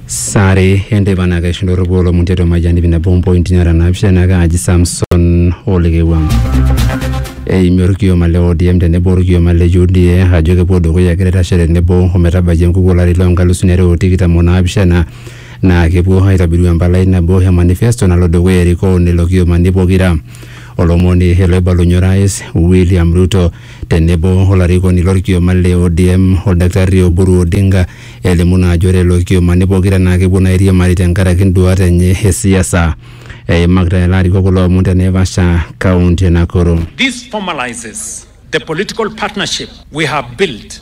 sare entebana keshinda ororua olomon tiatua majani vina bompointi nara naapishana kaaji samson olekewua eimie orkioma le odm tenebo orkioma le uda ajo kepuo dukuya egira aitashe tenebo ometabaiki enkuku olari loo nkalusuni are o tikitam o naapishana naa kepuo aitobiru empalai nabo e manifesto nalo dukuya erikoo lelo kiomani pokira olomoni ele oibalunye orais william ruto tenebo olarikoni lorkioma le ODM Oldakitari Oburu Odinga elimu naa ajo ore lelo kiomani pokira naa kepuo naa airiamari tenkaraki nduat enye e siasa. Eimakita lelo arikok kulo omon te Naivasha, kaunti e Nakuru. This formalizes the political partnership we have built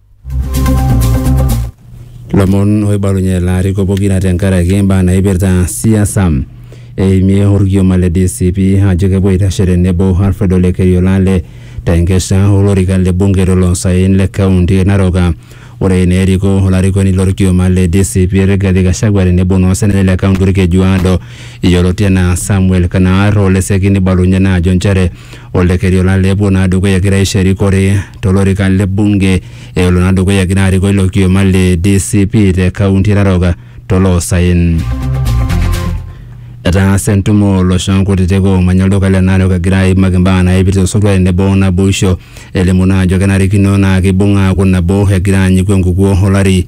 lomon oibalunye laariko pokira tenkaraki imbaa naipirta siasa eimie orkioma le DCP ajo kepuo aitashe tenebo Alfred Ole Keriolale tenkesha olorika le bunge toloosaen le kaunti e Narok. Ore eneriko olarikoni lorkioma le DCP Rigathi Gachagua tenebo naa osenetani le kaunti Orkejuado yioloti enaa Samuel Kanaar oleseki nibalunye naa ajo nchere Oldekerio naa lepuo naa dukuya egira aisho erikore tolorika le bunge elo naa dukuya egira arikoo ilo kioma le DCP te kaunti e Narok toloosaen. Etaasa entumo olooshon kutitik oomanya olduka le Narok egira aimaki imbaa naipirta osotua tenebo naboisho elimu naa ajo kenarikino naa keibung aaku nabo egira aanyiku enkukuo olari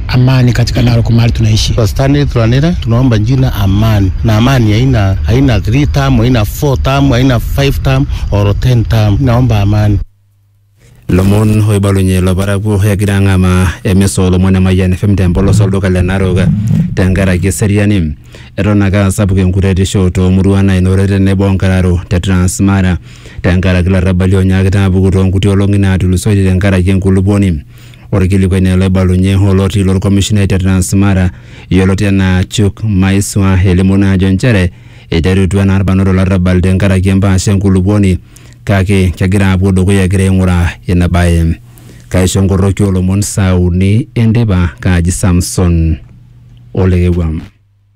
amani katika nalo kwa mahali tunaishi. Kwa Stanley Tulanira tunaomba jina amani, na amani haina haina 3 term, haina 4 term, haina 5 term or 10 term. Naomba amani. lomon oibalunye loparakuo egira ang'amaa emisa olomon emayian fm tempolos olduka le narok tenkaraki eseriani eton ake asapuk enkuretisho toomuruan nainore tenebo onkararo te transmara tenkaraki larrabali onyaakita apuku toonkuti olong'i naatulusoitie tenkaraki enkulupuoni Orkilikuai naa oloibalunye oloti lorkomishonai te Transmara yioloti anaa Chuk Maiswa elimu naa ajo nchere eiterutua naa irbanot olarrabal tenkaraki empaasha enkulupuoni kake kegira aapuo dukuya egira aing'uraa ina bae. Kaisho nkorroki oolomon saa uni enteipa, kaaji Samson Olekewua.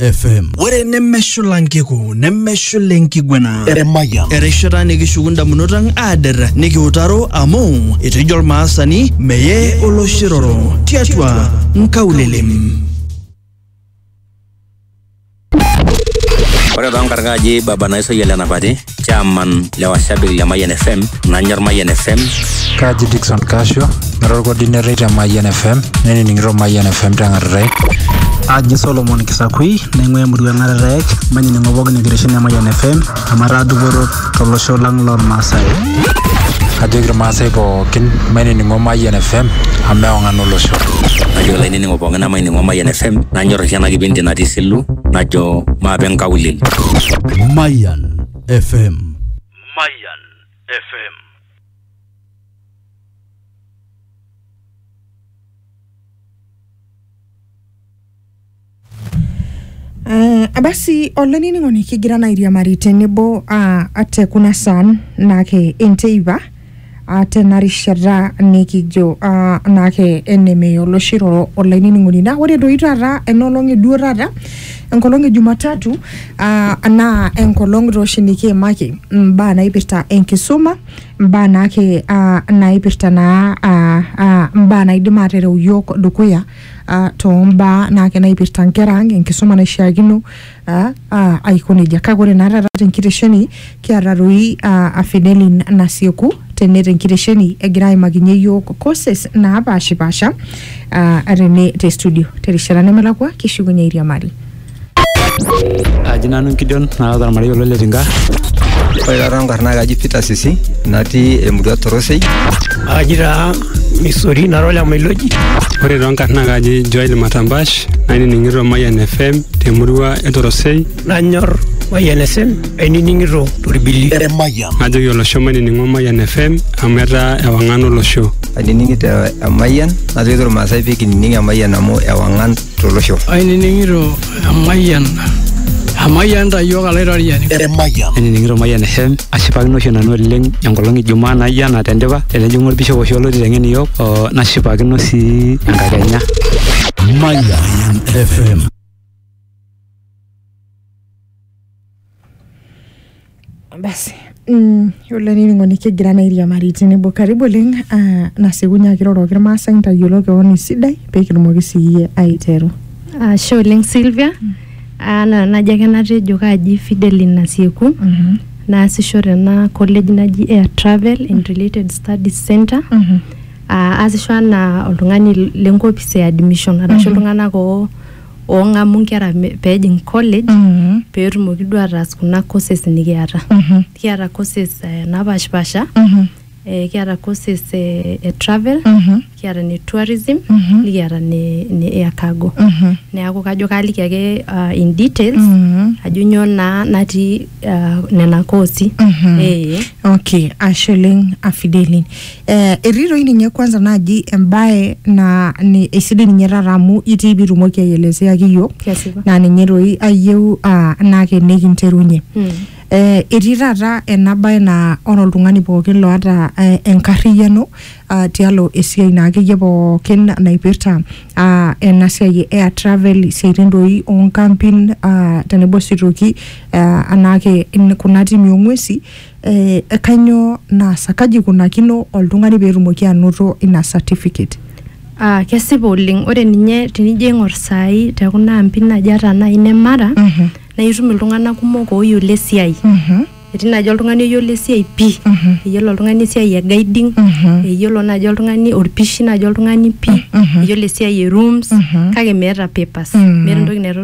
FM. ore nemeshula nkiku nemeshula enkiguana Emayian. erishata nikishuku ndamunot ang aader nikiutaro amu etejo olmaasani meye oloshiroro tiatua nkaulelem Ore too nkarkaji baba naisayia lenapati chairman le washabiki le Mayian FM nanyor Mayian FM Kaji Dickson Kasho, nara olkordinetoi te Mayian FM, nenining'ito Mayian FM teng'atatai. Aji Solomon Kisakui, naing'ua emurua eng'atatai, manining'o pookin enkitesheni e Mayian FM, amu ataa dupoto tolosho lang lormaasai. Kajoki irmaasai pookin mainining'o Mayian FM amu eong'an olosho. najo olainining'o pookin namaining'o Mayian FM nanyor oshi ena kipindi natii Silu najo maape nkaulele Mayan FM. Mayan FM. Uh, basi olainining'oni kigira naa airiamari tenebo uh, ate kuna saam naake enteipa Aa tena rishata nikijo aa naake enemeya oloshi roro olainining'oni. Naa ore doi taata ena olong e duo taata enkolong e Jumatatu aa naa enkolong taa oshi nikiimaki imbaa naipirta enkisuma, imbaa naake aa naipirta naa aa aa imbaa naidim aatereu iyiok dukuya aa too mbaa naake naipirta nkera ang', enkisuma naishiakino. Ah, ah, aiko nejia kake ore naa taata tenkitesheni kiata toi ah, afidelin nasieku tene tenkitesheni egira aimakinye yiok courses naapashipasha ah, tene te studio terishata nemelakua kishukunye airiamari aji nanu nkidion naata ormarei olo letinka Ore taata nkarna kaji Peter Sisi natii emurua Torosei. Aji taa Missouri nara ole Mailoji. Ore too nkarna kaji Joel Matambash nainining'ito Mayian FM temurua e Torosei. Nanyor Mayian FM ainining'ito torbili. Eremayian. Najoki olosho mainining'o Mayian FM amu etaa ewang'an olosho. Ainining'ito Emayian najoki irmaasai pee kinining Emayian amu ewang'an tolosho. Ainining'ito emayian emayian ta iyiook alaitoriani. Emayian. Ainining'ito Mayian FM ashipakino oshi nanu oleng enkolong e Jumaa naijo ena tendipa tenejing'u olbishop oshi olo aiteng'en iyiook oo nashipakino sii enkakenya. Mayian FM. basi mm, yiolo ening'oni kigira naa airiamari tenebo karibu oleng ah, nasiekunye ake iroroki irmaasai ntayiolo kewon esidai peekitumoki siiyie aiteru Ashe oleng Sylvia. Ah, na- najo ake natejo kaaji Fideline Nasieku. Naasisho tena college naji Air Travel and Related Studies Center. Mhm. Ah, aasisho anaa oltung'ani lenkopis e admission arashu Mhm. iltung'anak oo oong'amu nkera me- peejing college Mhm. peetumoki duo ataas kuna courses nikiata Mhm. kiata courses eh, napaashipasha Mhm. eh, kiata courses eh, e travel Mhm. kiata ne tourism Mhm. nikiata ne, ne air cargo Mhm. neeku kajo kaaliki ake ah, in details Mhm. ajo nyoo naa natii ah, nena koosi Mhm. eh. okay ashe oleng afidelin Eh, etii toi ninye kwanza naaji embae na ni eisidai ninye taata amu itii pitumoki aielezeaki iyiok Kesipa. naa ninye toi ayieu ah, naa ke nikinterunye Mm. eh, etii taata ena bae naa ore oltung'ani pookin loata eh, enkarriyiano ah, tialo esiai naa akeyie pookin naipirta ah, ena siai e air travel isiaitin doi onkampin ah, tenebo sii toki ah, anaake in- kuna timi ong'uesi eh, kanyoo naasa kaji ikunakino oltung'ani peetumoki anoto ina certificate Ah, kesipa oleng ore ninye tenijo aing'or saai te kuna ampi naaji ata naaji ne mara Mhm. naa itum iltung'anak kumok ooyiolo esiai Mhm, etii naaji oltung'ani oyiolo esiai pii Mhm. eyiolo oltung'ani esiai e guiding Mhm. eyiolo naaji oltung'ani orpishi naaji oltung'ani pii Mhm. eyiolo esiai e rooms Mhm. kake meeta papers Mhm. meeta entoki naitodolu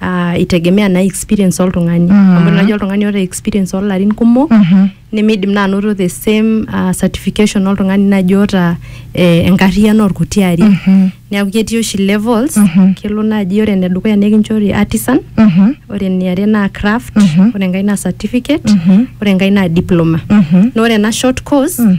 ah, itegemea naa experience oltung'ani Mhm. amu naji oltung'ani oota experience oolarin kumok Mhm. nemeidim naa anoto the same ah, certification oltung'ani naji oota eh, enkarriyiano orkuti ari Mhm. neeku ketii oshi levels Mhm. kelo naaji ore enedukuya nikinchori artisan Mhm. ore eniare naa craft Mhm. ore enkae naa certificate Mhm. ore enkae naa diploma Mhm. na ore ena short course Mm.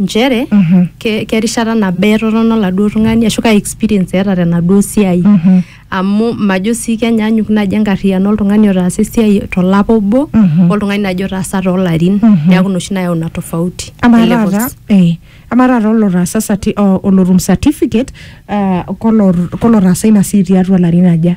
nchere Mhm. ke- kerishata nabo etotona oladuo tung'ani ashu kaa experience eeta tenaduo siai Mhm. amu majo sii kenyaanyuk naaji enkarriyiano oltung'ani otaasa esiai tolapa obo Mhm. oltung'ani naaji otaasa toolarin Mhm. neeku inoshi nayau ina tofauti amaa e levels. taata eh, amaa taata olotaasa sati- o- olotum certificate ah, kolor- kolotaasa ina siai tiatua larin aja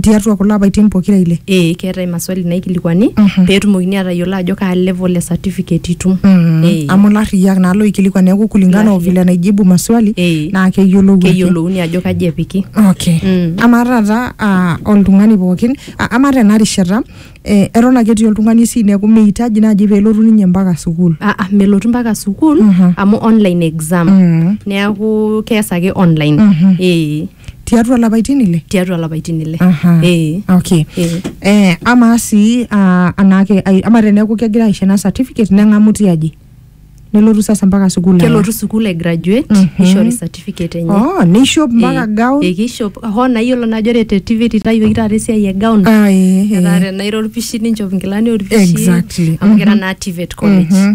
tiatua kulo apaitin pokira ile ee keetae maswali naikilikuani Mhm. peetumokini atayiolo ajo kaa level e certificate itum Ee. amu larriyiak naa loikilikuan neeku kulingana o Larriyiak. vile naijibu maswali Ee. naa keyiolou ake. keyiolouni ajo kaji epiki Okay. Mm. Amaa taata ah, oltung'ani pookin, ah, amaa tena rishata eh, eton ake etii oltung'ani esiai neeku meitaji naaji peelotu ninye mpaka sukuul. Ah, ah, melotu mpaka sukuul Mhm. amu online exam Mm. neeku kees ake online Mhm. ee tiatua lapaitin ile tiatua lapaitin ile Aha. eh okay eh eh amaa sii ah, anaake ai- ama teneeku kegira aisho ena certificate neng'amu tiaji nelotu sasa mpaka sukuul aya. kelotu sukuul ai graduate Mhm. nishori certificate enye oh neishop mpaka Eh, gown eh, kishop hoo naa iyiolo naajo ore te tv titayioki taata esiai e gown Ah, eh, eh. etaa tenairo orpishi ninchop inkilani orpishi Exactly. amu kira Mhm. naa tivet college Mhm.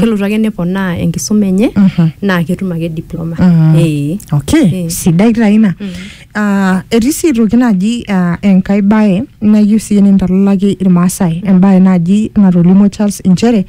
kelotu ake neponaa enkisuma enye naa ketum ake diploma ee okay Eh. sidai taa ina Ah, etii sii aitoki naaji ah, enkae bae nayieu sii nintalalaki irmaasai embae naaji natolimuo Charles inchere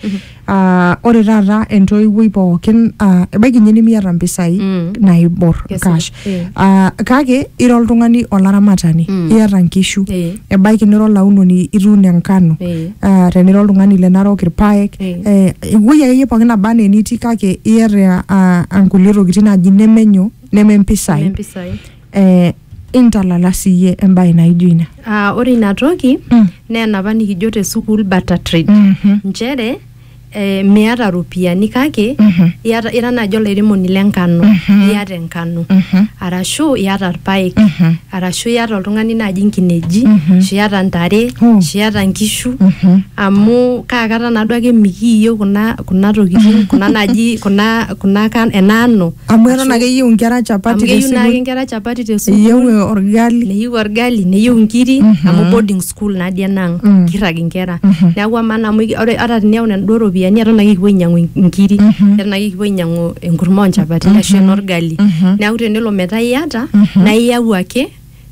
ah, ore taata entoiwuoi pookin ah, ebaiki ninye nimiata mpisai Mm. naibor Kesipa. cash Eh. Ah, kake ira oltung'ani olaramatani Mm. iyata nkishu Eh. ebaiki nira olaunoni ituuno enkano Eh. Ah, tenira oltung'ani le narok irpaek Eh. eh, ewuei akeyie pookin naba anaa enitii kake iyata ah, ah, nkulie tokitin naaji nemenyo neme mpisai Nempisai. eh, intalala siyie embae naijo ina Ah, ore ina toki Mm. naa enapa nikijo te sukuul barter trade Mhm. nchere eh, miata iropiyiani kake Mhm. iata ira naaji olairemoni le nkano Mhm. iata enkano Mhm. arashu iata irpaek Mhm. arashu iata oltung'ani naaji nkineji Mhm. ashu iata ntare Oh. ashu iata nkishu Mhm. amu kaa kata naaduo ake mikiiyieu kuna kuna tokitin kuna naaji kuna kuna kan- ena ano amu eton Ashu- ake eyieu inkera amu chapati keyieu naake tesukul nkera chapati te sukuul eyieu orgali neyieu orgali neyieu nkiri Mhm. amu boarding sukuul natii enaang Mm. kirrag inkera Mhm. neeku amaa naa amu iki- ore ata tiniyau naduo ropiyiani eton ake kipuo ainyiang'u in- inkiri Mhm. eton ake kipuo ainyiang'u enkurma onchapatini ashu enorgali Mhm. neeku tenelo metaa iyata Mhm. naa iyau ake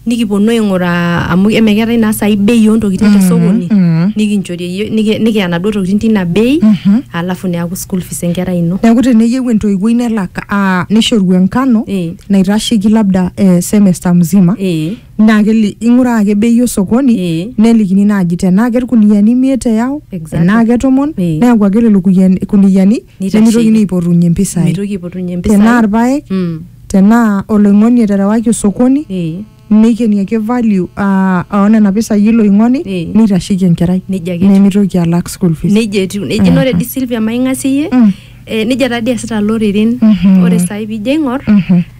nikiponu aing'uraa amu emeketai naa sai bei ontokitin Mhm. tesokoni Mhm. nikinchori eyie- niki- nikiya naduo tokitin tina bei Mhm. alafu neaku school fees enkerai ino neeku teneyieu entoiwuoi nelak ah, nishoru enkano Eh. naitasheki labda eh, semester mzima Eh. Naa keli, ing'uraa ake bei osokoni Ee. nelikini naaji tenaa kelkuniyiani imiet eyau Exactly. enaa ketomon Ee. neeku ake lelo kuyiani- kuniyiani Neitasheiki. nemeitokini aipotunye impisai mitoki aipotunye mpisai tenaa irpaek Mm. tenaa oloing'oni eterewaki osokoni Ee. neikeni ake value ah, oo nena pisai ilo oing'oni Ee. neitasheiki enkerai Nejia ake etiu. nemeitoki alak school fees nejia etiu nejia naa ore di Silvia maing'asie Mm. eh, nejia taa dii eesita iloreren Mhm. ore saai piijo aing'or Mhm.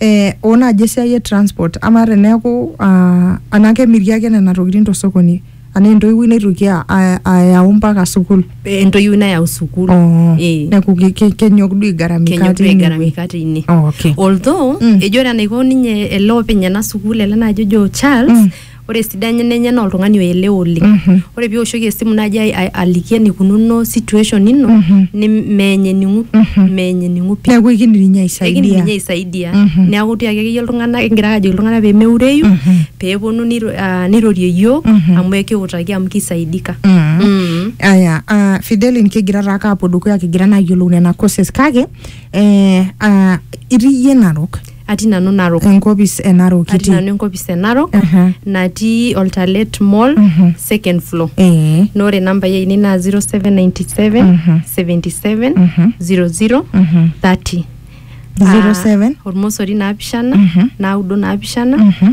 eh, oo naaji esiai e transport ama teneeku ah, anaa kemiri ake nena tokitin tosokoni anaa entoiwuoi naitoki a- a- ayau mpaka sukuul Eh, entoiwuoi nayau sukuul Oh, Eh. neeku ke- ke- kenyok duo aigaramika kenyok tine wueji. aigaramika tine Oh, okay. although Mm. ejo ore enaiko ninye ele openy ena sukuul ele naaji ojo charles Mm. ore esidano enye naa oltung'ani oelewa oleng Mhm. ore piwoshoki esimu naaji ai- ai- aliki enikununo situation ino Mhm. ni- meeny ening'u Mhm. meeny ening'u pii neeku ekindim ninye ekindim ninye aisaidia aisaidia Mhm. neeku tiaki akeyie iltung'anak kingira ake ajoki iltung'anak pemeureyu Mhm. peeponu niro- ah, nirorie iyiok Mhm. amu ekiutaki amu kisaidika Mm. Mm. aya ah, fidelin kigira taake apuo dukuya kigira naa ayiolou nena courses kake eh, ah, itii iyie narok atii nanu narok enkopis e narok atii kiti nanu enkopis e narok Aha. natii oltalet mall Mhm. second floor ee na ore nambai ainei naa 0797 Mhm. 77 Mhm. 00 Mhm. 30 07 Ah, ormosori naapishana Mhm. naudo naapishana Mhm.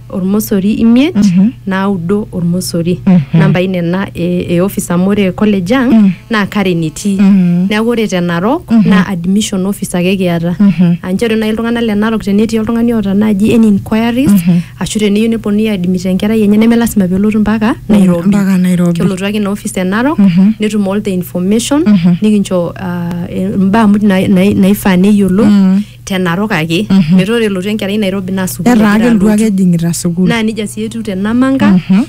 ormosori imiet Mhm. naudo ormosori Mhm. nambai nena e, e office amu ore college ang Mm. naa Karen etii Mhm. neeku ore te Narok Mhm. naa admission office ake kiata Mhm. aa nchere naaji iltung'anak le Narok tenetii oltung'ani oota naaji any inquiries Mhm. ashu teneyieu neponunui aadmit enkerai enye neme lasima pelotu mpaka Nairobi mpaka Nairobi. kelotu ake ina office e Narok Mhm. netum all the information Mhm. nikincho ah, eh, imbaa muj nai- nai- naifaa neyiolou Mm. te narok ake Mhm. metaa ore elotu enkerai nairobi naa sukuul etaa egira kelotu alotu. ake ejing'ita sukuul naa nejia sii etiu te namanga Mhm,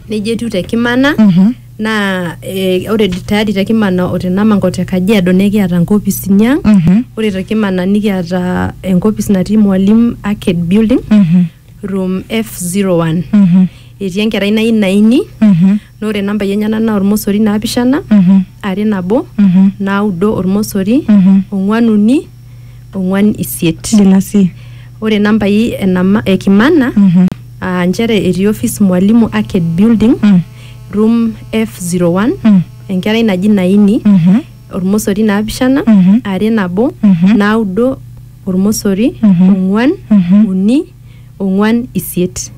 nejia etiu te kimana mhm. naa eh, ore tayari te kimana o te namanga o te kajiado nekiata nkopisini ang Mhm, ore te kimana nikiata enkopis natii mwalimu arcade building mhm, room f01 mhm, etii enkerai nayieu naini mhm. Naa ore nambai enyena naa olmosori naapishana, are nabo, naudo olmosori, ong'uan uni, ong'uan isiet. Nena sii. Ore nambai enama e Kimana aa nchere etii office Mwalimu Arcade building, room F01, enkerai naji Naini, olmosori naapishana, are nabo, naudo olmosori, ong'uan, uni. ong'uan isiet.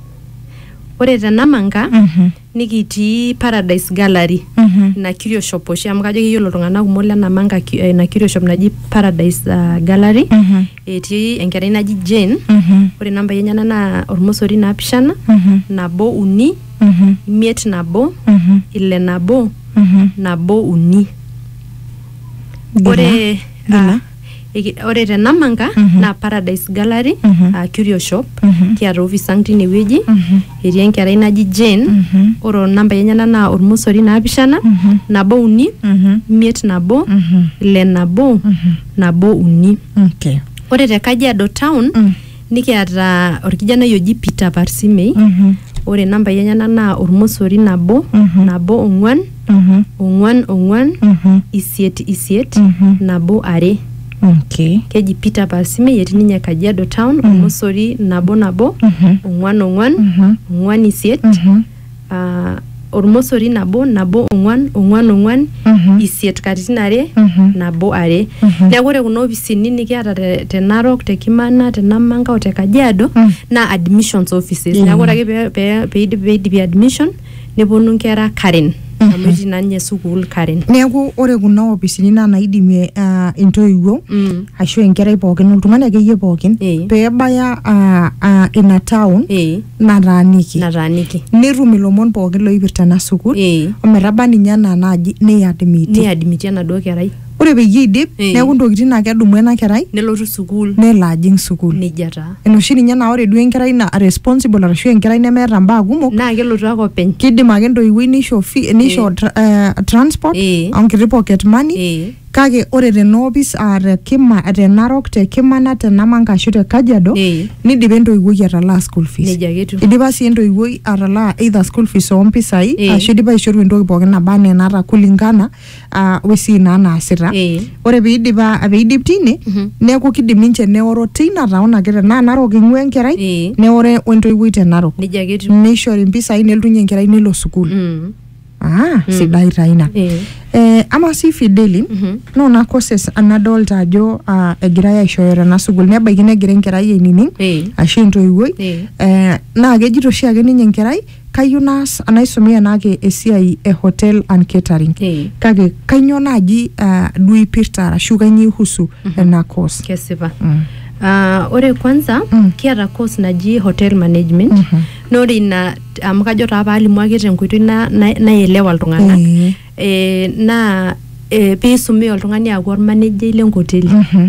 Ore te Namanga Mhm. nikitii Paradise Gallery Mhm. ina kirioshop oshi amu kajo keyiolo iltung'anak kumok le Namanga ki- eh, ina kirioshop naji Paradise ah, Gallery Mhm. etii enkerai naji Jane Mhm. ore nambai enyenak naa ormosori naapishana Mhm. nabo uni Mhm. imiet nabo Mhm. ile nabo Mhm. nabo uni Gila. ore Gila. ah, Iki- ore te Namanga naa Paradise Gallery aa Curio Shop kiata office ang tine wueji etii enkerai naji Jane ore onambai enyenak naa ormosori naapishana nabo uni imiet nabo ile nabo nabo uni Okay. ore te Kajiado town Nikiata orkijanai oji Peter Parsimei. Mhm. Ore nambai enyenak naa ormosori nabo, Mhm. nabo ong'uan, Mhm. ong'uan ong'uan, Mhm. isiet isiet, Mhm. nabo are. Okay. Keji Peter Parsimei etii ninye Kajiado town, ormosori nabo nabo, Mhm. ong'uan ong'uan, Mhm. ong'uan isiet, Mhm. ah, ormosori nabo nabo ong'uan ong'uan ong'uan Mhm. isiet katitin are Mhm. nabo are Mhm. neeku ore kuna ofisini nikiata te, te narok te kimana te namanga o te kajiado Mm. naa admissions offices Mm. neeku ore ake pee- pee- peidip- peidipi admission neponu nkera karen amu etii naa ninye sukuul Karen. Neeku ore kuna opisini naa naidimie ah, intoiwuo Mm. ashu enkerai pookin oltung'ani akeyie pookin Eh. peebaya ah, ah, ina town Eh, nataaniki nataaniki. netum ilomon pookin loipirta ena sukuul Eh. ometaba ninye enaa naaji nei admit Ni admit enaduo kerai. ore peyie eidip Eh. neeku ntokitin naa kedumu ena kerai nelotu sukuul nelo ajing sukuul nejia taa enoshi ninye naa ore duo enkerai na responsible arashu enkerai nemeeta mbaa kumok naa kelotu ake openy kidim ake entoiwuoi nisho fee, nisho Eh. tra, eh, transport Eh. onkiti pocket money Eh. kake ore tena opis aa te kima te narok te kimana te namanga ashu te kajiado Eh. nidipa entoiwuoi atalaa school fees Nejia ake etiu. idipa sii entoiwuoi atalaa either school fees ompisai Eh. ashu idipa aishoru entoki pookin naba anaa enaata kulingana ah, wesii naa naasita Eh. ore piidip a- piidip tine Mhm. neeku kidim ninche neoro teina taon ake tenaa narok ing'ua enkerai Eh. neore wentoiwuoi te narok nejia ake etiu nishori impisai neltunye enkerai nelo sukuul Mm. ah, sidai taa ina Eh. eh, ama sii fideli Mhm. noona courses anadolta ajo ah, egirai aishooyo tena sukuul nebaiki negira enkerai ainining Eh. ashu entoiwuoi Eh. eh, naa kejito oshiake ninye enkerai kayieu naas naisomea enaake esiai e hotel and catering Eh. kake kainyoo naaji ah, duo ipirta arashu kainyoo ihusu ena course kesipa Mm. Ah, ore kwanza Mm. kiata course naji hotel management Mhm. na ore ina amu kajo taa paalimu ake tenkoitoi na- na- naielewa iltung'anak Eh. eh, naa eh, piisumi oltung'ani aaku ormanejai lenkoteli Mhm.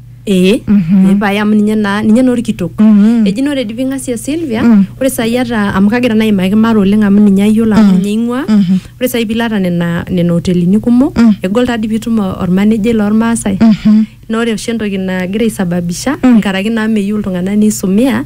ee ee pae amu ninye naa ninye naa orkitok Mhm. eji naa ore dii ping'asia Sylvia Mm. ore sai ata amu kagira naa aimaki mara oleng amu ninye ayiolo amu ninye aing'ua Mhm. ore sai piilo ata nena nena hotelini kumok Mm. egol taa dii piitum o- ormanejai lormaasai Mhm. naa ore oshi entoki nagira aisababisha nkaraki naa meyieu iltung'anak nisumia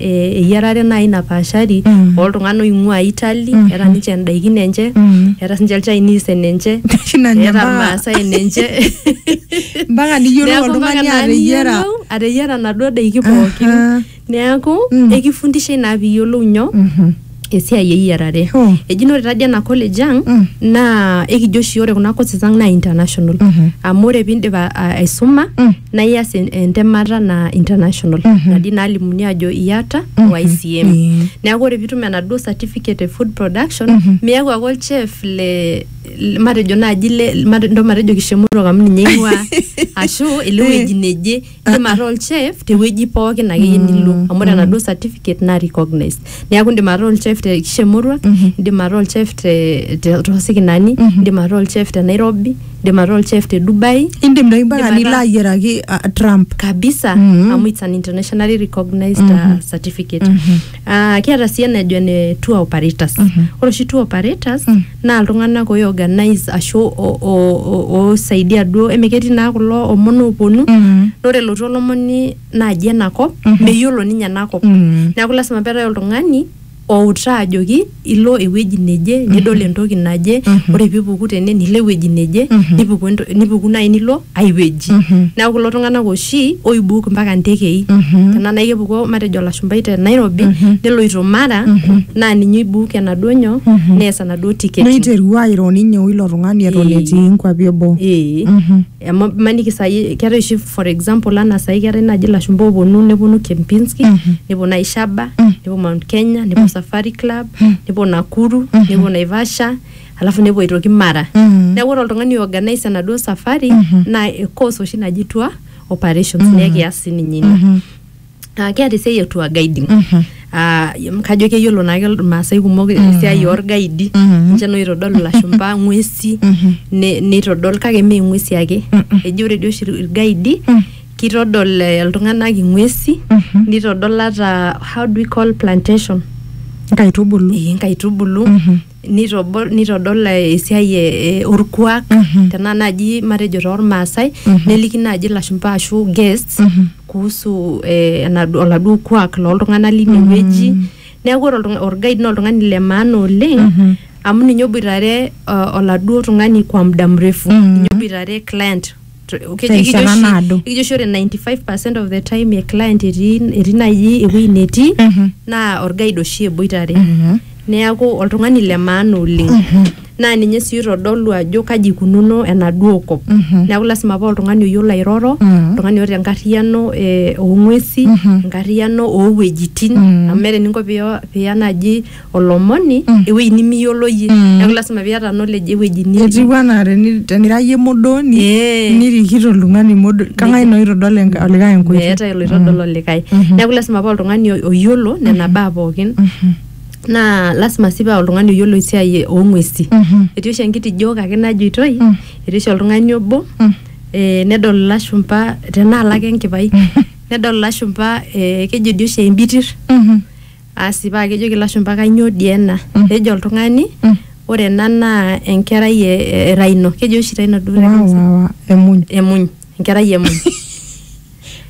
eh, eyiarare naaji napaashari Mm. oltung'anak oing'ua Italy Mhm. eeta ninche indaikin enche Mm. eeta sinche ilchinese enenche Shina nye eeta mpaka- irmaasai enenche mpaka niyiolou Neeku mpaka oltung'ani naa ateyiara niyiolou ateyiara naduo daiki pookin Aha. neeku Mm. ekifundisha ina piyiolou nyoo Mhm. esiai eyiarare Oh. eji naa ore tadi ena college ang Mm. naa ekijo oshi ore kuna courses ang naa international Mhm. amu ore piindip a- a- aisuma Mm. naa ias en- entemata naa international Mhm. nadi nalimuni ajo iyata Mhm. YCM Mm. neeku ore piitum enaduo certificate e food production Mhm. miaku ake olchef le le- matejo naaji le mate- ndo matejo kishemutok amu ninye ing'ua ashu ele wueji neje indim ataa olchef tewueji pookin akeyie nilo amu ore enaduo certificate naa recognized neeku indim ataa olchef te kisha emurua indim ataa olchef te te- tosikinani indim ataa olchef te nairobi indim ataa olchef te dubai indim doi mpaka Indim nilo ataa- ayiaraki ah, trump kabisa Mhm. amu it's an internationally recognized uh, certificate Ah, kiata sii enajo ene tour operators Mhm. ore oshi tour operators Mm. naa iltung'anak oiorganize ashu o- o- o- oisaidia duo eme ketii naa kulo omon ooponu Mm. ore elotu olomoni naaji enakop Mhm. meyiolo ninye enakop Mm. neeku lasima peetae oltung'ani outaa ajoki ilo ewueji neje nidol entoki naje ore piipuku tene nilo ewueji neje nipuku ento- nipuku naaji nilo ai wueji neeku kulo tung'anak oshi oibuuk mpaka ntekei tenaa naaji kepuku matejo olashumpai te nairobi neloito mara naa ninye oibuuk enaduo nyoo nees enaduo tiketi neiterua airo ninye oilo tung'ani eton Ee. etii nkuapi eboo ee amu maniki sai keetae oshi for example anaa sai keetae naaji ilashumba ooponu neponu Kempinski nepuo naaji Shaba nepuo Mount Kenya nepuo Safari Club nepuo Nakuru nepuo Naivasha alafu nepuo aitoki Mara neeku ore oltung'ani organise enaduo safari naa e course oshi naji tour operations naa ekias sininye ina Ah, keeta esiai e tour guiding Ah, em, kajo keyiolo naake irmaasai kumok esiai orgaidi ninche naa oitodolu ilashumba ng'uesi ne- neitodol kake mee ng'uesi ake eji ore dii oshi irgaidi kitodol eh, iltung'anak ing'uesi nitodol ata how do we call plantation nkaitubulu Eh, inkaitubulu nitobol nitodol eh, esiai eh, eh, orkuak Mhm. tenaa naaji matejo toormaasai Mhm. neliki naaji ilashumba ashu guests Mhm. kuhusu eh, enadu- oladuo kuak looltung'anak line Mhm. wueji neeku ore oltung'a- orguide naa oltung'ani le maana oleng Mhm. amu ninye oboitare uh, oladuo tung'ani kwa muda mrefu Mhm. ninye oboitare client terishata naado. Ekijo oshi ore 95% of the time e client etii etii naaji ewueji netii Mhm. naa orguide oshi eboitare. Mhm. Neaku oltung'ani le maana oleng. Naa ninye sii oitodolu ajo kaji ikununo enaduo kop. Mhm. Neaku lasima paa oltung'ani oyiolo airoro, Mhm. oltung'ani oota enkarriyiano eh, oo ng'uesi, Mhm. enkarriyiano oo wuejitin. Mhm. Amu meeta eninko piya piya naaji olomoni ewueji nimiyiolo iyie neeku lasima piata knowledge ewueji nitii etiu anaa teni- tenira iyie modoni Eh. nirikito oltung'ani modoni kang'ae naa oitodol enka- olikae enkoitoi meetae oloitodol olikae neeku lasima paa oltung'ani o- oyiolo nena baa pookin naa lasima sii paa oltung'ani oyiolo esiai oong'uesi Mhm. etii oshi enkitijo kake najoitoi Mm. etii oshi oltung'ani obo Mm. eh, nedol ilashumpa tenaa lake enkipai nedol ilashumpa eh, kejo dii oshi embitir Mhm. Asi paa kejoki ilashumba kainyoo dii ena? Mm. Nejo oltung'ani mm. ore ena naa enkerai e, e Raino. Keji oshi Raino duo. Wa, wa, wa. Emuny. Emuny. Enkerai emuny.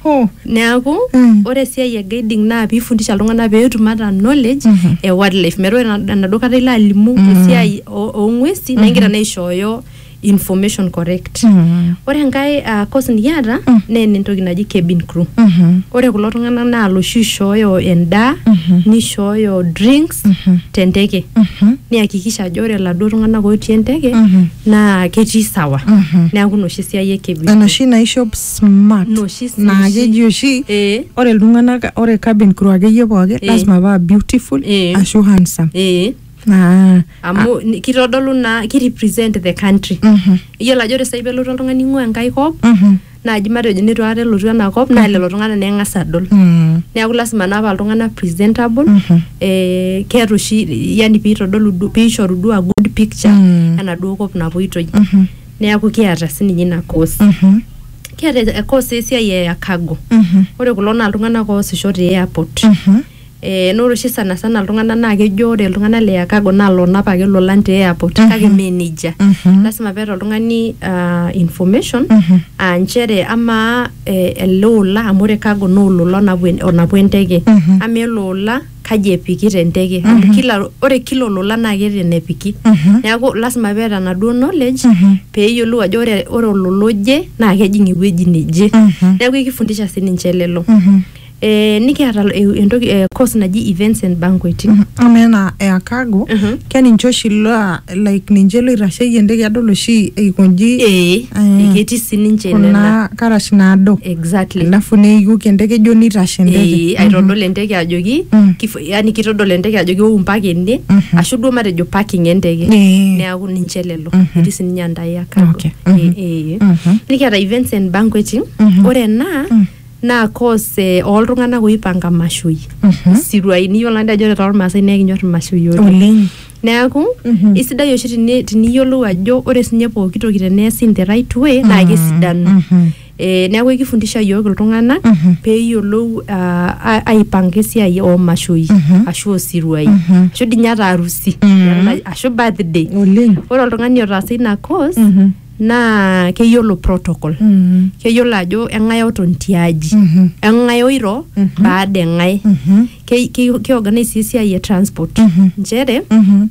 oh. Neaku mm. ore esiai e guiding naa piifundisha iltung'anak peetum ata knowledge mm -hmm. e wildlife. Metaa ore enaduo kata ilo alimu mm. esiai oo ng'uesi mm -hmm. naa igira mm-hmm. naa aishooyo information correct Mhm. ore enkae uh, course nikiata Mm. naa ene entoki naji cabin crew Mhm. ore kulo tung'anak naa loshi oishooyo endaa Mhm. nishooyo drinks Mhm. tenteke Mhm. niakikisha ajo ore laduo tung'anak otii enteke Mhm. naa ketii sawa Mhm. neeku inoshi siai e cabin crew. enoshi naishop smart Inoshi si- naa oshi. keji oshi Eh, ore iltung'anak ore cabin crew akeyie pooki Eh. lazima paa beautiful Eh. ashu handsome eh. Ah, amu ni- kitodolu naa ki represent the country mhm, iyiolo ajo ore sai pelotu oltung'ani ing'ua enkae kop mhm, naaji matejo nitu aikata elotu ena kop naa lelo tung'anak naa eng'as adol mm, neeku lasima naa paa iltung'anak presentable mhm, eh, keeta oshi yani piitodolu du- piishoru duo a good picture Mm. enaduo kop napuitoi mhm, neeku kiata sininye ina course mhm, kiata e- course esiai e cargo mhm, ore kulo naa iltung'anak oosisho te airport mhm, Eh, na ore oshi sanasana iltung'anak naa kejo ore iltung'anak le Chicago naa loonap ake ilolan te airport kake mee nejia lasima peeta oltung'ani ah, information aa nchere amaa eh, ele ola amu ore cargo naa olola onapu en- onapu enteke amaa ele ola kaji epiki tenteke amu kila ore kila olola naa keeta enepiki neeku lasima peeta enaduo knowledge peeyiolou ajo ore ore olola oje naa kejing ewueji neje neeku ekifundisha sininche lelo Eh, nikiata lo- e- entoki eh, course naji events and banqueting ama ena e akago Mhm. keninche oshi laa like ninche loitasheyie entoki adol oshi eikonji eh, Ah. ketii sininche nena kuna karash naado exactly alafu neiuki enteke ijo nitashe enteke Eh, aitodol enteke ajoki Mm. kif- yani kitodol enteke ajoki ou mpaka ene Mhm. ashu duo matejo parking enteke Eh. neaku ninche lelo Mhm. etii sininye andai akago Okay. Mhm. Eh, eh. Mhm. nikiata events and banqueting Mhm. ore ena Mm. naa cause eh, ooltung'anak oipanga imashoi Mhm. isiruai niyiolo naa dii ajo ore toormaasai naa ekinyor imashoi oleng oleng neeku Mhm. isidai oshi tini- tiniyiolou ajo ore sinye pooki toki teneesi in the right way naa kesidanu Mhm. Eh, neeku ekifundisha yiok iltung'anak Mhm. peeyiolou ah, a- aipanga esiai oomashoi Mhm. ashu osiruai Mhm. ashu dii ninye ata arusi Mhm. ashu birthday oleng ore oltung'ani otaasa ina course Mhm. naa keyiolo protocol Mm. keyiolo ajo eng'ae oton tiaji Mhm. eng'ae oiro Mhm. baada eng'ae Mhm. Ke- ke- keorganize sii esiai e transport Mhm. nchere Mhm.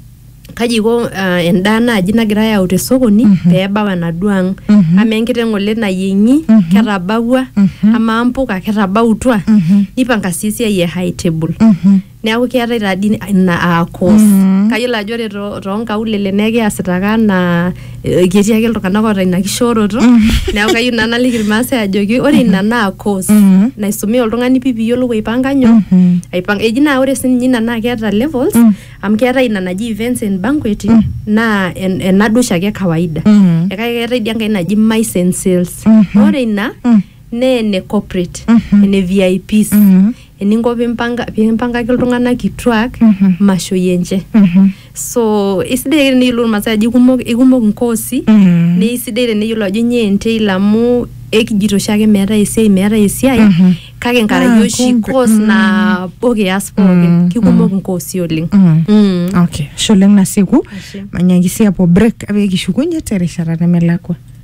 kaji iko ah, endaa naaji nagirae ayau te sokoni Mhm. pee ebau enaduo ang Mhm. amaa enkiteng ng'ole nayieng'i Mhm. ketabawua Mhm. amaa mpuka ketabautua Mhm. nipanga sii esiai e high table Mhm. Neaku keetae taa dii ina aa cause. Mm-hmm. Kayiolo ajo ore toonkaulele naa ekiasita ake anaa eh, ketii ake iltung'anak oota ina kishooroto. Mm-hmm. Neaku kayieu naa naliki Irmaasai ajoki ore ina mm-hmm. naa cause naisumia oltung'ani pii piyiolou aipanga nyoo? Aipanga. Eji naa ore siininye ina naa keeta levels mm. amu keetae ina naji events and banqueting mm. naa ena duo oshiake e kawaida. Mm. Kake keetae dii enkae naji mice and sales. Ore ina naa ene corporate, ene VIPs. eninko pimpanga pimpangaki iltung'anak kituak Mhm. mashoi enche Mhm. so isidai ake teneyiolou irmaasai ajo ikumok ikumok inkoosi Mm. naa isidai teneyiolo ajo nyoo entail amu ekijito oshiake meetae esiai meetae esiai Mhm. kake Ah, nkaraki oshi kumbe. course Mm. nabo kias Mm, pookin kikumok inkoosi oleng Mm. Mm. okay ashe oleng nasieku Ashe. manyaki sii apuo break pee kishukunye terishata nemelakua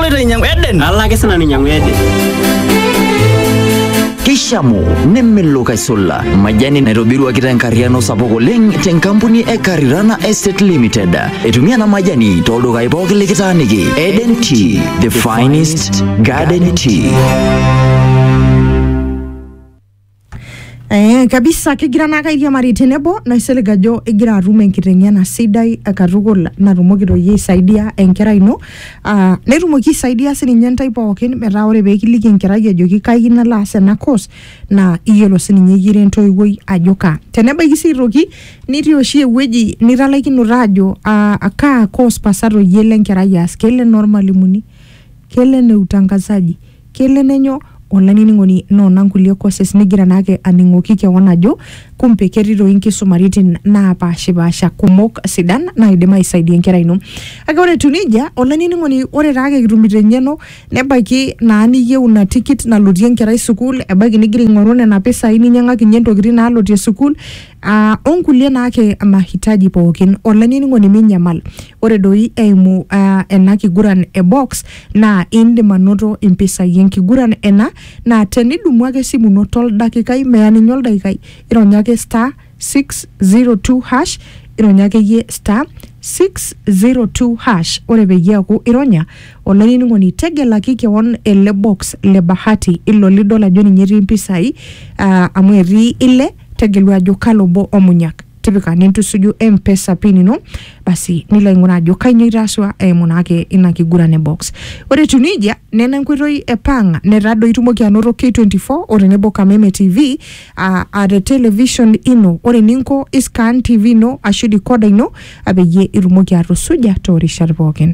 aloito ainyiang'u Eden. Nalo ake sinanu ainyiang'u Eden. Keishamu nemelok aisula majani naitobiruaki tenkarriano sapuk oleng tenkampuni e Karirana Estate Limited. Etumia ena majani tooldukai pooki likitaaniki. Eden Tea, the finest garden tea. Eh, kabisa kigira naa kairiamari tenebo naisilig ajo igira atum enkiteng'ena sidai eh, katukul natumoki toi aisaidia enkerai ino ah, netumoki aisaidia sininye intae pookin metaa ore peekiliki enkerai ajoki kai kiyieu nalo aas ena course naa iyiolo sininye iyie ira entoiwuoi ajo kaa tenebaiki sii aitoki nitii oshi ewueji nitalaikinote ajo ah, kaa course pasa toi elo enkerai aas kelo enormalimuni kelo ene utangazaji Kelo nenyo olainining'oni noona nkulie courses nigira naake aning'oki kewon ajo kumpe ketii toi nkisumaritin naapaashipaasha kumok sidan naaidim aisaidia enkerai ino. Kake ore etiu neija, olainining'oni ore taake kitumito eng'eno nebaiki naa niyieu ina tikit nalotie enkerai sukuul, ebaiki nigira aing'oru nena pisai ninyang'akinye ntokitin naalotie sukuul aa o nkulie naake mahitaji pookin. Olainining'oni minyamal, ore doi eimu aa ena kiguran e box. Naa indim anoto impisai enkiguran ena naa tenidumu ake esimu ino toldakikai meya ninye oldakikai ironya ake star 602 hash ironya akeyie star 602 hash ore peyie eaku ironya olainining'oni tegelaki kewon ele box le bahati ilo lidol ajo ninye etii impisai ah, amu etii ile tegelu ajo kalo obo omunyak tipika nintusuju mpesa pin ino basi nilo aing'uraa ajo kainyoo itaasua eimu naake ina kiguran e box ore etiu nejia nena enkoitoi e pang netadoi itumoki anoto k24 o tenebo kameme tv aa aa te television ino ore eninko iscan tv ino ashu dikoda ino apeyie itumoki atusuja toorishat pookin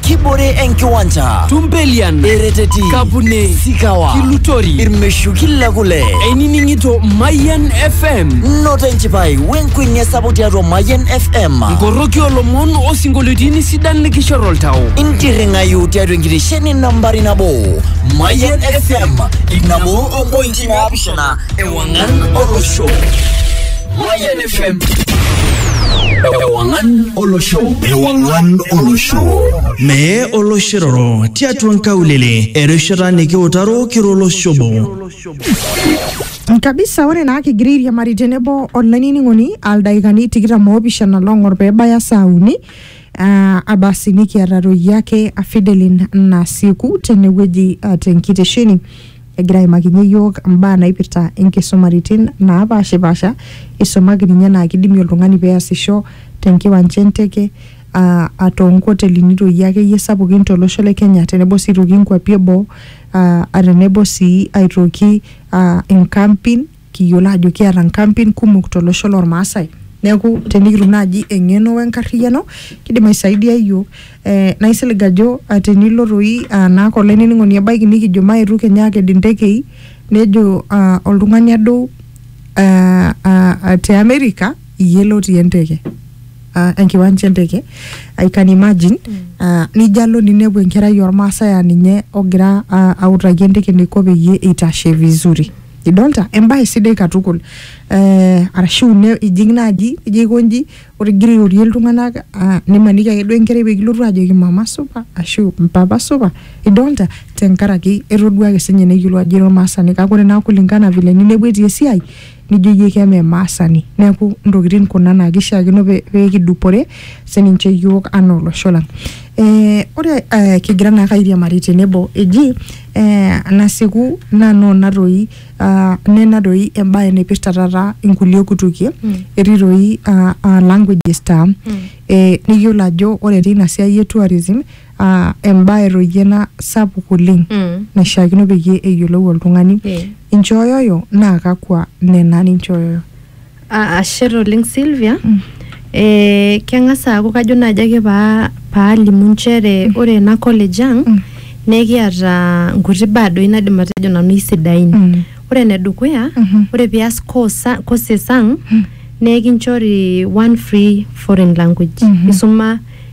kibore enkiwanja Tumpelian, ereteti Kapune, sikawa Kilutori, irmeshuki le kule einining'ito Mayian FM, noto enchipai wenkuenia sapuk tiatua mayian fm nkoroki olomon osinkolioitin sidan likishor oltau. intirring'ayu tiatua enkitesheni nambari nabo mayian fm inabo ompointi naapishana ewang'an olosho Mayian FM. Ewangan Olosho. Ewangan Olosho. Mee oloshiroro tiatua nkaulele erishata nikiutaro kiro olosho obo. kabisa ore naa kigira airiamari tenebo olainining'oni aldaikani tikitam oopishana long'or peebaya saa uni ah, abasi nikiata toi ake afidelin nasiku tenewueji ah, tenkitesheni egira aimakinye iyiook imbaa naipirta inkisumaritin naapaashipaasha, isumaki ninye enaa kidimi oltung'ani peasisho tenkiwanja enteke aa a toonkotelini doi akeyie sapukin tolosho le Kenya tenebo sii aitoki inkuapi eboo aa tenebo sii aitoki aa inkampin. kiyiolo ajo kiata nkampin kumok tolosho lormaasai neeku tenikitum naaji eng'eno wenkarriyiano kidim aisaidia iyiok eh, naa isilig ajo ah, tenilo toi ah, naake olainining'oni ebaiki nikijo maetu kenya aked intekei nejo ah, oltung'ani adou ah, ah, ah, te America iyie lotii enteke uh, enkiwanja enteke I can imagine uh, nijo alo ninepu enkerai ormaasai aa ninye ogira uh, autaki enteke eneiko peyie eitashe vizuri idolta embae sidai katukul eh, arashu ne ijing naaji ijo aikonji ore igira airorie iltung'anak ah, nimaniki ake duo enkerai pekilotu ajoki mama supa ashu mpapa supa idolta tenkaraki etodua ake sinye neyiolou ajo ira ormaasani kake ore naa kulingana vile ninepu etii esiai nijo iyie keme maasani neeku intokitin kuna naa kishiakino pe- pekidupore sininche iyiok anaa olosho lang eh, ore eh, kigira naake airiamari tenebo eji eh, nasiku naa noo natoi ah, ne natoi embae naipirta taata inkulie kutukie Mm. etii toi ah, ah, languages taa Mm. eh, nikiyiolo ajo ore teina siai e tourism ah, embae toi ena sapuk oleng Mm. naishiakino peyie eyiolou oltung'ani Eh. inchooyoyo naa kakwa nena ninchooyoyo Ah, ashe oleng Sylvia eh, keng'as aaku kajo naaji ake paa paalimu nchere ore ena college ang Mm. naa ekiata nkuti baa doi naidim atejo nanu isidain Mm. ore enedukuya Mhm. ore pias course a- courses ang naa ekinchori one free foreign language Mm. isuma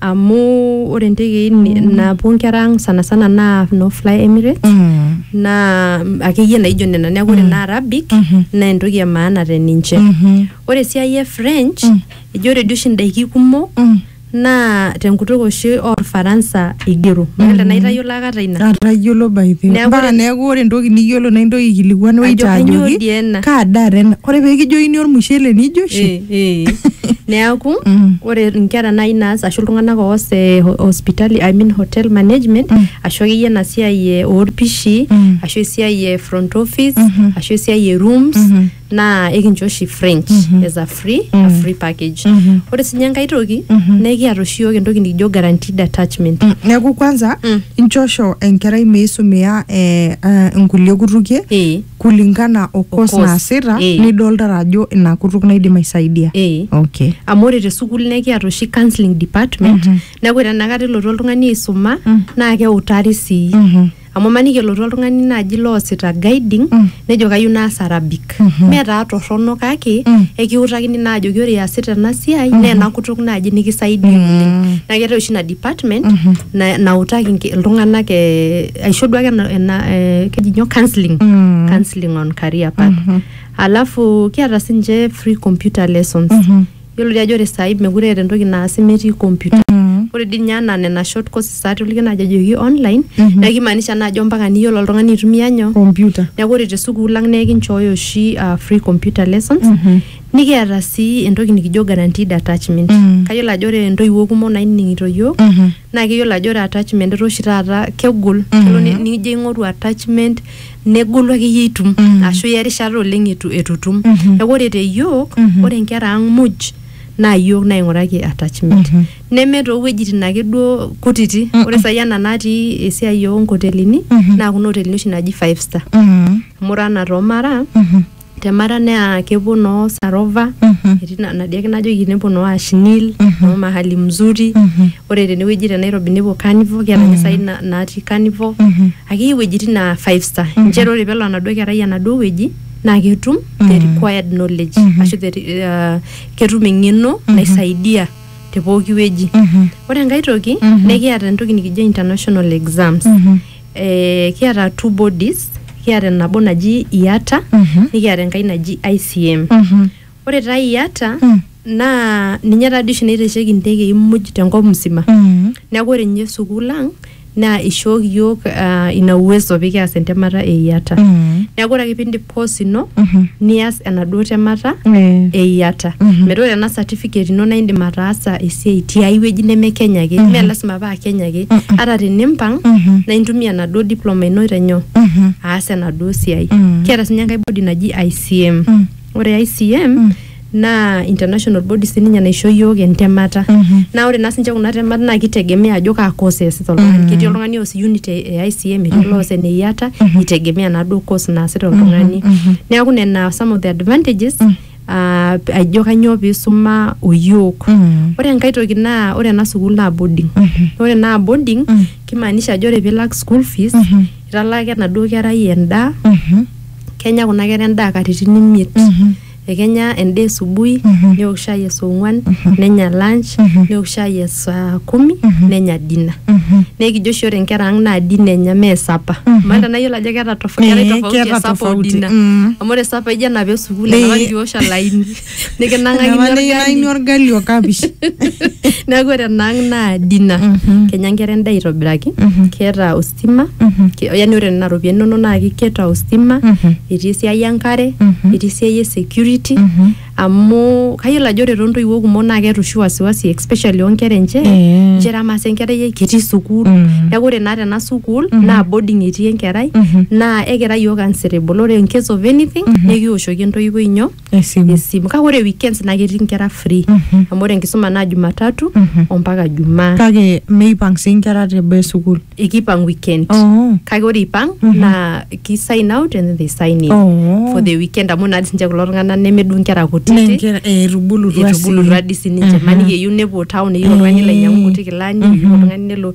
amu ore ntekei mm. napuo nkera ang sanasana naa no fly emirates mm. naa akeyie naijo nena neeku ore mm. naa arabic mm -hmm. naa entoki e maana te ninche mm -hmm. ore esiai e french mm. eji ore dii oshi ndaiki kumok mm naa tenkutuk oshi orfaransa igero mm-hmm. maata tenaa itayiolo akata ina atayiolo by the way mpaka neeku ore entoki niyiolo naa intoki aikilikuan waiter ajoki kaa daa tena ore pee kijokini ormushele nijo oshi eh. Eh, neaku Mm. ore nkera nai naas ashu iltung'anak oos eh, ho- hospitali I mean hotel management Mm. ashu akeyie ena siai eh, orpishi Mm. ashu esiai e front office Mhm. ashu esiai e rooms Mhm. naa ekincho oshi french Mhm. as a free a Mm. free package Mhm. ore sinye enkae toki Mhm. naa ekiata oshi yiok entoki nikijo guaranteed attachment Mm, neeku kwanza Mm. inchosho enkerai meisumia eh, eh, nkulie kutukie Eh. kulingana o course course, naasita eh. nidoltata ajo ina kutuk naidim aisaidia Eh. okay amu ore te sukuul naa ekiata oshi counseling department Mhm. neeku ore enakata elotu oltung'ani aisuma Mm. naa keutari sii Mhm. amu maniki elotu oltung'ani naaji loosita guiding Mm. nejo kayieu naas arabic Mhm. metaa torrono kake Mm. ekiutakini naa ajoki ore iasita ena siai naa ena kutuk naaji nikisaidia Mm. oleng naa keetae oshi ina department Mhm. na- nautaki inke- iltung'anak eh, aisho duake ena, ena eh, keji nyoo counseling Mm. counseling on career path Mhm. alafu kiata sinche free computer lessons Mhm. yiolo dii ajo ore saai mekure eeta entoki naasi metii computer Mm. ore dii ninye anaa nena short courses atoliki naajo ejoki online Mhm. naa kimaanisha naa ajo mpaka niyiolo oltung'ani aitumia nyoo computer neeku ore te sukuul lang naa ekinchooyo oshi uh, free computer lessons Mhm. nikiata sii entoki nikijo guaranteed attachment Mm. kayiolo ajo ore intoiwuo kumok nainining'ito yiok Mhm. naa keyiolo ajo ore attachment etaa oshi taata kegol kelo ni- nijo aing'oru attachment negolu akeyie itum ashu iya erishata oleng etu etu itum neeku ore te yiok ore inkera ang muj naa yiok naing'uraki attachment neme toowuejitin ake duo kutiti ore sai ena natii esiai onkotelini naa kuna otelini oshi naji five star amu ore anaa too mara temara naa kepuo noo sarova Mhm. etii na- nadia ake najoki nepuo noo ashnil noo mahali mzuri ore tenewueji te nairobi nepuo carnival kiata ninye sai na- natii carnival Mhm. akeyie iwuejitin naa five star nchere ore pelo enaduo kerai enaduo wueji naa ketum the required knowledge ashu the, re- uh, ketum eng'eno naisaidia te pooki wueji Mhm. ore enkae toki nekiata entoki nikijo international exams Mhm. eh, kiata two bodies kiata nabo naji iata Mhm. nikiata enkai naji ICM Mhm. ore taa iata Mm. naa ninye taadi oshi naitasheki intekei muj tenkop msima Mhm. neeku ore ninye sukuul ang naa ishooki yiok ah, ina uwezo pikias entemata e iata Mhm. neeku ore ake pindip course ino nias enaduo temata Eh. eyiata metaa ore ena certificate ino naa indim ataasa esiai tiai wueji neme Kenya ake mee lasima paa Kenya ake ata tenimpang naa intumia enaduo diploma ino aitanyoo aas enaduo siai kiata sinye enkae body naji ICM ore ICM naa international body sininye naisho yiok entemata naa ore naa sinche kuna temat naa kitegemea ajo kaa course easita oltung'ani ketii oltung'ani oos unit e e ICM etii oloos ene IATA itegemea naaduo course naasita oltung'ani neeku nena some of the advantages ah, ajo kanyoo piisuma oyiok ore enkae toki naa ore ena sukuul naa boarding ore naa boarding kimaanisha ajo ore piilak school fees italaaka enaduo kerai endaa kenya kuna kera endaa katitin imiet Ekenya endaa esubui, neok shai e saa ong'uan, nenya lunch, neok shai e saa kumi, nenya dinner. Naa ekijo oshi ore nkera ang' naa dinner enya mee supper. Maata enaa iyiolo ajo keeta tof- keetae Ee, tofauti keeta e supper o tofauti, dinner. mm. Amu ore supper ijo enapaa e sukuul, Ee. enapaki iwosh olaini, nikinang'akini Enapaa nikinaini orgali. orgali o kapish. Neeku ore enaang' naa dinner. Kenya nkera endaa aitobiraki, keeta ostima Mhm. Ki- yaani ore nena ropiyiani inonok naa kiketa ostima Mhm. etii esiai enkare Mhm. etii esiai e security Mhm. amu kayiolo ajo ore toontoiwuo kumok naa keeta oshi wasiwasi especially oonkera enche Eh. nchere amaa sa enkerai ai ketii sukuul Mm. neeku ore naa tena sukuul naa boarding etii enkerai Mhm. naa ekira yiok answerable ore in case of anything nikiwoshoki entoiwuoi nyoo Esimu. esimu kake ore weekends naa ketii inkera free Mhm. amu ore enkisuma naa jumatatu Mhm. ompaka jumaa Kake meipang sii inkera te boo e sukuul. ekipang weekend Oh. kake ore ipang Mhm. naa ki sign out and then they sign in Oh. for the weekend amu naa sinche kulo tung'anak nemeduo inkera kutiti Nenkera eh, etubulutua sii. etubulutua dii sininche Aha. maniki eyieu nepuo town eyieu oltung'ani Eh. lainyang'u nkuti kilani eyieu Mhm. oltung'ani nelo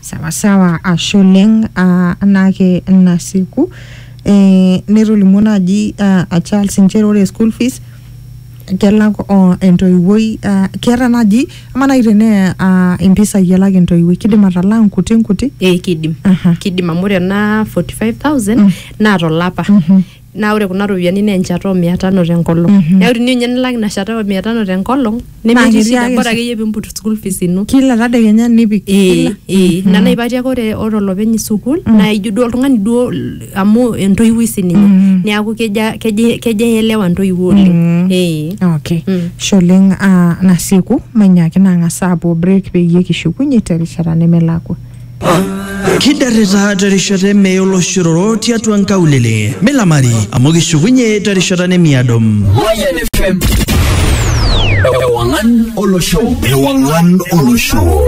sawasawa ashe oleng ah, anaake nasiku eh, netolimuo naaji ah, a Charles nchere ore school fees kelak o entoiwuoi ah, keeta naaji ama naaji tenee ah, impisai elak entoiwuoi kidim atalaa nkuti nkuti Eh, kidim Aha. kidim amu ore ena 45000 naa tolapa naa ore kuna ropiyiani naa enchata oo mia tano tenkolong Mhm. neeku tiniu ninye nilak ina shata oo mia tano tenkolong Naa nemetii ketii shida ake bora sa- akeyie piimput school fees ino kila tadekenya nipik Ee, kila ee. ina naipati ake ore ore olopeny sukuul naa ijo duo oltung'ani duo l- amu entoiwuoi sininye Mm. neeku keja keja keja eelewa ntoiwuo oleng Mm. ee okay Mm. Ashe oleng ah, nasieku mainyaaki nang'as aapuo break peyie kishukunye terishata nemelakua Kidarrita terishata eme oloshororo tiatua nkaulele. Milamari amu kishukunye terishata nemiado. Mayan FM. Ewangan Olosho. Ewangan Olosho.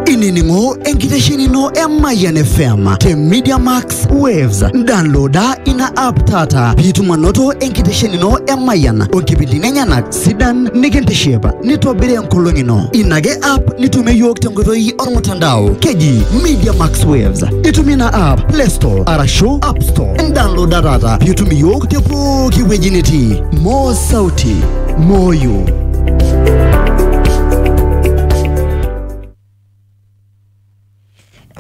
inining'o enkiteshenino e Mayan FM te Media Max Waves. Downloada ina app taata piitum anoto enkiteshenino e Mayan onkipindini enyenak sidan nikintiship nitobiri enkolong ino ina ake app nitumie yiok tenkoitoi ormutandao keji media max waves itumie ina app play store arashu app store indownloada taata piitum iyiok te pooki wueji nitii moo sauti moyo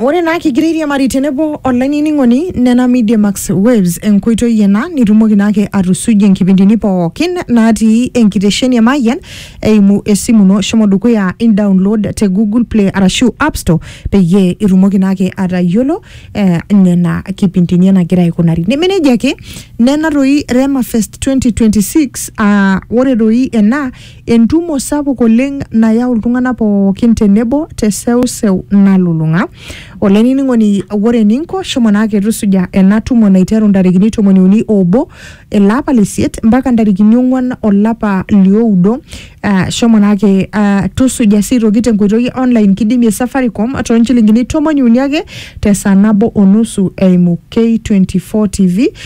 Ore naa kigira airiamari tenebo olainining'oni nena Media Max Waves enkoitoi ena nitumoki naake atusujie nkipindini pookin natii enkitesheni e Mayian eimu esimu ino shomo dukuya in download te Google Play arashu App Store peyie itumoki naake atayiolo eh, nena kipindini enagira aikunari. Neme nejia ake nena toi Rema Fest 2026 aa ore doi ena Entumo sapuk oleng nayau iltung'ana pookin tenebo te seuseu nalulung'a. Olainining'oni ore eninko shomo naake tusuja ena tumo naiteru ntarikini tomoni uni oobo ele apa le isiet mpaka ntarikini ong'uan olapa lioudo. Uh, shomo naake uh, tusuja sii aitoki tenkoitoi e online kidimie Safaricom toonchilingini tomoni uni ake te saa nabo o nusu eimu K24 TV